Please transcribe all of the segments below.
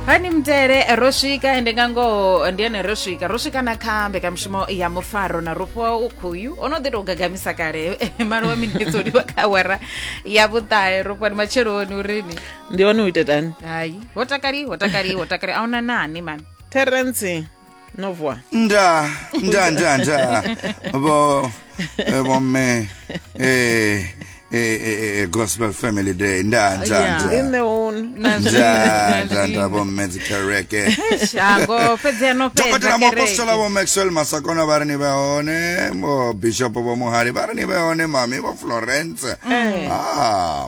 hani mutele ro swika ende nga ngoho ndi ene ro swika ro swika na kha mbekanyamushumo ya mufaro na rufhiwa ukhuyu o no ḓi tou gagamisa kale malo wa minetse o livha kha awara ya vhuṱahe rufhiwa ndi matsheloni urini ndi one u ita tani hayi ho takali ho takali ho takali a una nani mani terence No voa. Nda, nda, nda, nda. Bo, eh, bo me, eh, eh, eh, eh, gospel family day. Nda, nda, Yeah. nda. In the own. Nda, nda, nda, bo me dzikereke. Shako fhedzi no fhedza Dokotela muapostola vho Maxwell Masakona vha ri ni vhe hone, vho Bishop vho Muhali vha ri ni vhe hone, mami vho Florence. Ah,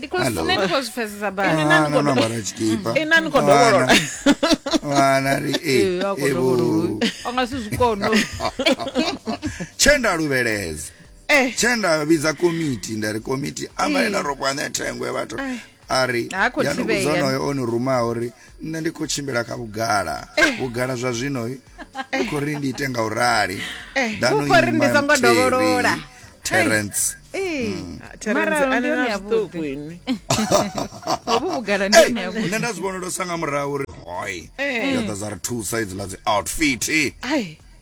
because nṋe ndi khou zwi pfesesa bana no no bara tshikipa ina ni khou dovholola vana ri e evo anga si zwi kono tshenda luvheleza eh. tshenda vhidza komiti nda ri komiti amba ina eh. ro kwane thengwe vhathu a ri ya no kuzono yo onu rumaho ri nṋe ndi khou tshimbila kha vhugala eh. vhugala zwa zwino eh. u khou ri ndi ite nga u rali eh, danokhori ndi songo dovholola terence hmm. nṋe nda zwi vhonolo sa nga murahu uri hoi yo ḓa dza ri thusa idziḽa dzi outfit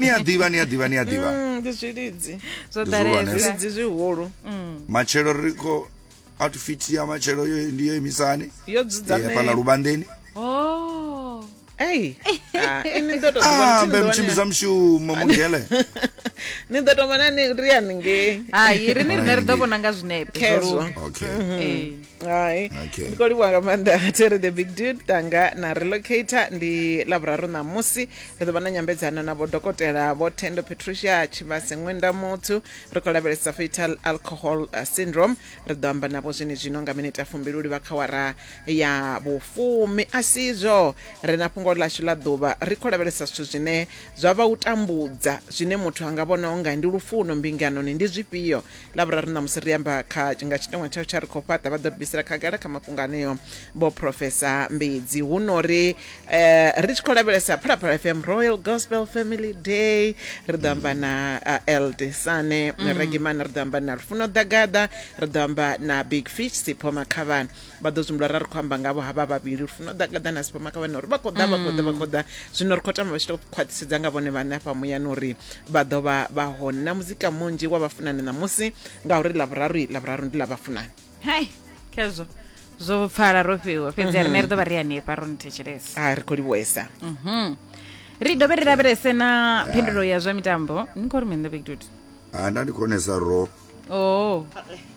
ni a ḓivha ni a ḓivha ni a ḓivha mm, ndi zwilidzi zwo ḓalezwilidzi zwihulu mm. matshelo ri khou outfit ya matshelo yo ndi yo imisani yo dzudzanea eh, fhala lubandeni oh ei ah, ini ndo to ah mbe mchimbiza mshumo mugele ni ḓo tou vhona ni ri haningei hai ri ni rine ri ḓo vhona nga zwinepe okay mm-hmm. eh. hai Okay. ndi khou livhuwa nga maanḓa tere the big dude tanga na relocator ndi lavhuraru ṋamusi ri ḓo vha na nyambedzano na vhodokotela vho tendo patricia tshivhase ṅwenda muthu ri khou lavhelesa fetal alcohol uh, syndrome ri ḓo amba navho zwine zwino nga minete ya fumbili u livha kha wara ya vhufumi a sizwo ri na fhungo ḽashu ḽa ḓuvha ri khou lavhelesa zwithu zwine zwa vha u tambudza zwine muthu a nga vhona unga ndi lufuno mbinganoni ndi zwifhio lavhuraru ṋamusi ri amba kha nga tshiteṅwa tsha tsha ri khou fhaṱa vha ḓo ri bvisela khagala kha mafhungo aneo vho profesa mbidzi hu no ri eh, ri tshi khou lavhelesa phalaphala fm royal gospel family day ri ḓo amba na uh, eld sane mm. regimana ri ḓo amba na lufuno ḓagaḓa ri ḓo amba na big fish sipho makhavhana vha ḓo tshimbila ra ri khou amba ngavho havha vhavhili uri funa ḓa gaḓa na sipama kha vhane uri vha khou ḓa vha khou ḓa vha khou ḓa zwino ri khou tamba vha tshi to khwaṱhisedza nga vhone vhane afha muyani uri vha ḓo vha vha hone na muzika munzhi wa vhafunani ṋamusi ngauri lavhuraru lavhuraru ndi ḽa vhafunani hai khezwo zwo pfala ro fhiwa fhedzi a rine ri ḓo vha ri hanefha ro ni thetshelesa a ri khou livhuesa mhm. ri dovhe ri lavhelese na phindulo ya zwa mitambo ni khou ri mini ḓo big dude ha nda ndi khonesa ro oh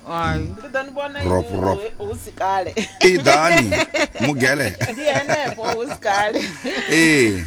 ai ndi ḓo ni vhona Rop, hu- rop. hu- hu si kale iḓani mugele ndi henefho hu si kale ee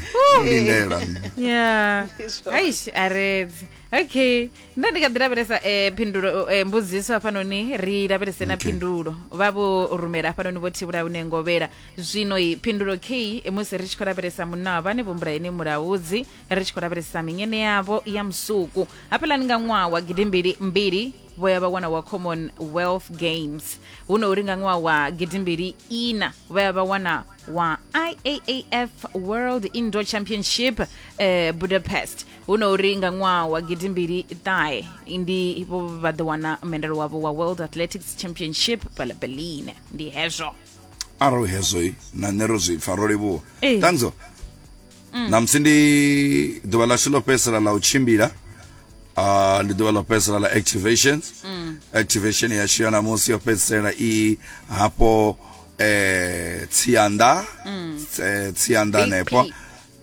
lindela ya Izwo. aish aredzi okay nda ndi kha ḓi lavhelesa um phindulo um mbudziso hafhanoni ri lavhelese na phindulo vha vho rumela hafhanoni vho thivhula une ngovhela zwino i phindulo k musi ri tshi khou lavhelesa munna wa vhane vho mbula ene mulaudzi ri tshi khou lavhelesa minyene yavho ya musuku hafhelani nga ṅwaha wa gidimbili mbili vho ya vha wana wa commonwealth games hu no uri nga ṅwaha wa gidimbili ina vho ya vha wana wa iaaf world indoor championship eh, budapest hu no uri nga ṅwaha wa gidimbili ṱahe ndi vho vha ḓo wana mendelo wavho wa world athletics championship pala berlin ndi hezwo arali hezwo na nṋe ro zwi pfa ro livhuwa Ee. tanzo ṋamusi ndi ḓuvha ḽashu ḽo fhedzisela ḽa u tshimbila uh, ndi ḓuvha ḽo fhedzisela ḽa activations mm. activation yashu ya ṋamusi yo fhedzisela i hafho eh, tsianda mm. eh, tsianda hanefho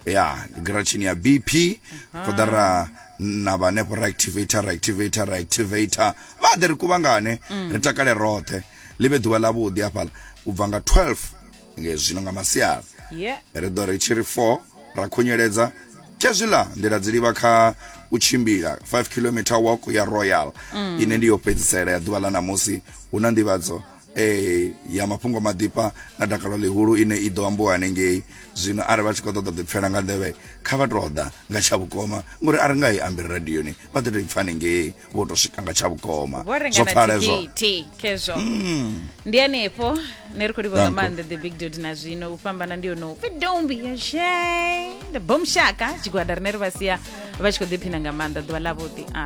ya gratshini ya bp ṱoḓa ra na vhanefho ra activator ra activator ra activator vha ḓe ri kuvhangane mm. ri takale roṱhe ḽi vhe ḓuvha ḽavhuḓi hafhaḽa u bva nga 12 ngezwino nga masiari yeah. ri ḓo ri tshi ri 4 ra khunyeledza khezwiḽa ndi la dzilivha kha u tshimbila 5 kilometer walk ya royal mm. ine ndi yo fhedzisela ya ḓuvha ḽa ṋamusi hu na nḓivhadzo eh ya mafhungo maḓifha na dakalo ḽihulu ine i ḓo ambiwa hanengei zwino arali vha tshi khou ṱoḓa ḓipfela nga nḓevhe kha vha tou ḓa nga tsha vhukoma ngori a ri nga i ambi radioni vha ḓo tou i pfha hanengei vho to swika nga tsha vhukoma vho renga zwo na pfala hezwo thikhithi khezwo ndi hanefho ne ri khou livha nga Danko. maanḓa the big dot na zwino u fhambana ndi yono upfi don't be ashamed bom shaka tshigwada rine ri vha sia vha tshi khou ḓiphina nga maanḓa ḓuvha ḽavhuḓi a